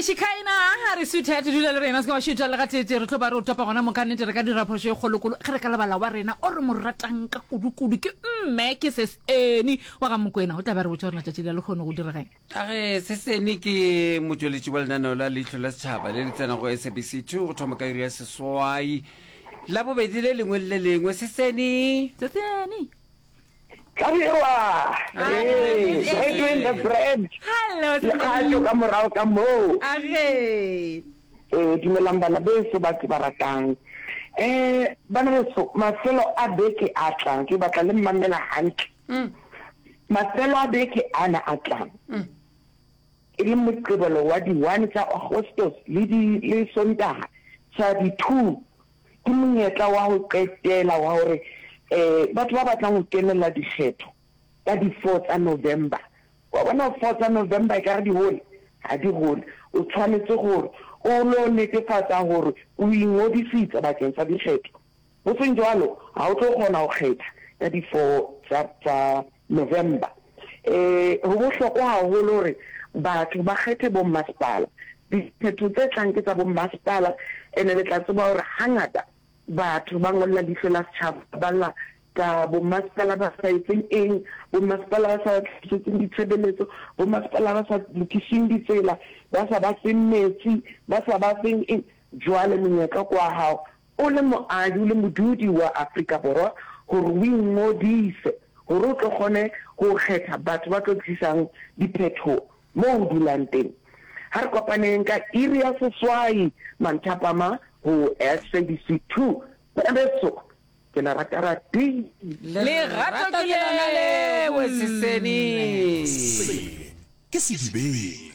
shikaina a re sweetheart dula le rena se ka wa šetša le ga tete re tlo ba re o topa gona moka nnete re ka dira phošo e kgolokolo ge re ka lebala wa rena o re mo ratang ka kudukudu ke mme ke seseni wa ga mokwena o tla ba re botša gore letšatši le le kgone go dirageng a re seseni ke motšweletši wa lenaneo la leitlho la setšhaba le le tsenago sabc two go thoma ka iri ya seswai la bobedi le lengwe le le lengwe seseni seseni Tlabirwa! Hee! Brethren the bread! Hello, Lekgatšo ka morago ka moo. Age! Ee, dumelang bana beso ba ke ba ratang. Eh, bana beso, mafelo a beke a tlang, ke batla le mmamela hantle. Mm. Mafelo a beke ana a tlang. Mm. E le Moqebelo wa di-one tsa Agostos le di le Sontaga sa di-two. Ke monyetla wa go qetela wa gore batho ba batlang go kenela dikgetho ka di four tsa November, wa bona four tsa November e ka re di hole, ga di hole, o tshwanetse gore o lo netefatsa gore o ingodisitse bakeng sa dikgetho, go seng jwalo ga o tlo kgona go kgetha ka di four tsa November. E, go bohlokwa gagolo gore batho ba kgethe bommasepala. Diphetho tse tlang ke tsa bommasepala, and-e le tla tseba gore gangata batho ba ngolla Leihlo la Setšhaba, ba lla ka bommasepala ba sa etseng eng, bommasepala ba sa ba tlisetseng ditshebeletso, bommasepala ba sa lokiseng ditsela, ba sa ba feng metsi, ba sa ba feng eng. Jwale monyetla ke wa gago, O le moahi le modudi wa Afrika Borwa gore o ingodise gore o tlo kgone go kgetha batho ba tlo tlisang diphetho moo o dulang teng. Ha re kopaneng ka iri ya seswai manthapama go SABC 2 Pereso. Ke le rata ratii. Lerato ke lona leo, Seseni. Se ke sedibeng